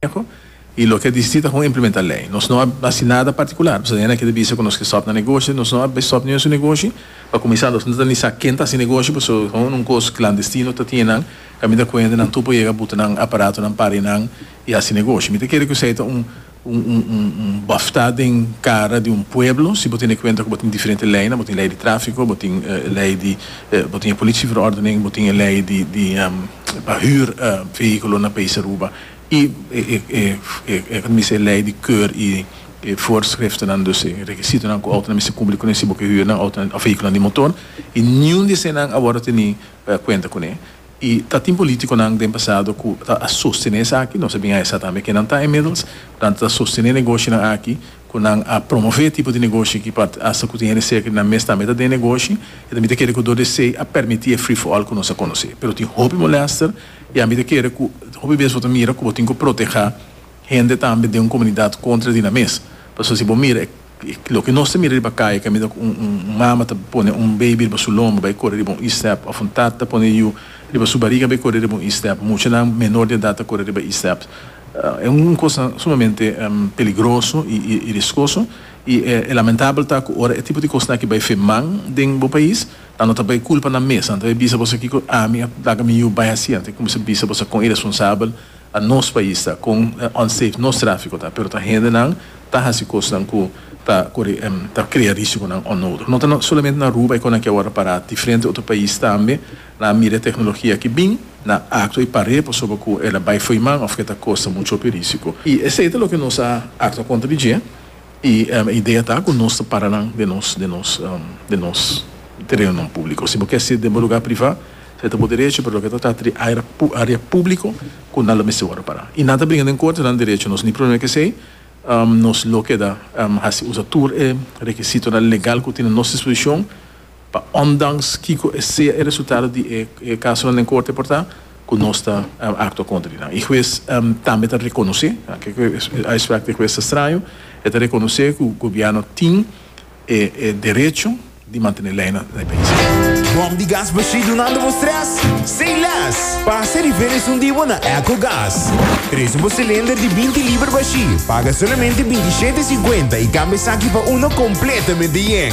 Conseho y loke a disiti ta con implementa ley. Nos no a haci nada particular pasobra hende aki ta bisa cu nos ke stop nan negoshi, nos no a be stop niun su negoshi. Pa cuminsa nos no ta ni sa ken ta haci negoshi pasobra ta un cos clandestino ta tiene nan. Caminda cu hende nan tur por yega buta nan aparato nan pari nan y haci negoshi. Mi ta kere cu esey ta un. un bafta den cara di un pueblo si bo tin e cuenta cu bo tin diferente leynan, bo tin ley di trafico, bo tin ley di bo tin e policia verordening, bo tin e ley di pa huur vehiculo na País Aruba y e ta mester e ley di keur y e voorschriftennan dus e requisitonan cu autonan mester cumpli cu nan si bo ke huur nan autonan of vehiculonan di motor y niun di eseinan awor a teni cuenta cune. Y ta tin politiconan den pasado cu ta a sostene esaki, nos a bin a hesa tambe kenan ta inmiddels, nan ta sostene negoshinan aki, cu nan a promove e tipo di negoshi aki pa hasta cu tin hende cerca di nan mes tambe ta den negoshi, y ta mita kere cu dor di esey a permiti e free for all cu nos a conoce. Pero tin hopi molester y a mita kere cu hopi bes bo ta mira cu bo tin cu proteha hende tambe den un comunidad contra di nan mes, pasobra si bo mira e. Loke nos ta mira riba kaya kaminda ku un mama ta pone un beibi riba su lomber bai kore riba un istep òf un tata ta pone yu riba su bariga bai kore riba un istep. Muchanan menor di edat ta kore riba istep. E un kos sumamente peligroso i riskoso i e lamentabel ta ku ora e tipo di kosnan aki bai firman den bo pais ta no ta bai kulpa nan mes, nan ta bai bisa boso kiko ami a laga mi yu bai hasi anto e kuminsa bisa boso kon iresponsabel. Ta nos pais ta con unsafe nos trafico ta pero ta hende nan ta haci cosnan cu ta cori ta crea risiconan onnodig no ta solamente na Aruba eco nan kier worde para diferente otro pais tambe nan a mira e tecnologia aki bin nan a actua y par'e pasobra cu el a bay foiman of cu e ta costa muchopi risico y esey ta loke nos a actua contra di dje. I e idea ta ku nos ta para nan den nos den nos den nos tereonan públiko. Si bo ke hasi den bo lugá privá, esei ta bo derecho, pero loke ta trata di área área públiko ku nan lo mester wòrdu pará. I nan ta bringa den korte, nan derecho, nos ni problema ku esei, nos lo keda hasi usa tur e rekisitonan legal ku tin na nos disposishon. Pa ondanks kiko e sea e resultado di e casonan den corte por ta, cu nos ta actua contra di nan. Y huez tambe ta reconoce, kiko e uitspraak di huez ta straño, e ta reconoce cu gobierno tin e derecho di mantene ley na e pais. Bom di gas bashí dunando bo stress? Say less! Pasa riba e resondí bo na Ecogas. Preso bo cilinder di binti liber bashí, paga solamente binti shete e cincuenta y cambia esaki pa uno completamente yen.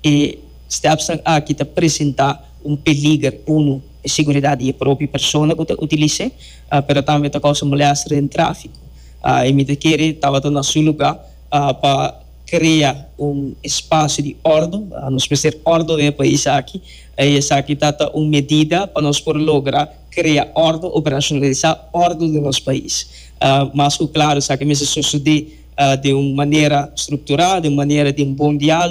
E stepsnan aki ta presentá un peliger, unu, e seguridat di e propi persona ku ta utilis'é, pero tambe ta kousa molèster den tráfiko. E mi ta kere tabata na su lugá pa krea un espasio di òrdu. Nos mester òrdu den e pais aki i esaki ta ta un medida pa nos por logra krea òrdu, operashonalisá òrdu den nos pais. Mas ku klaru esaki mester sosodé den un manera strukturá, den un manera di un bon diálogo.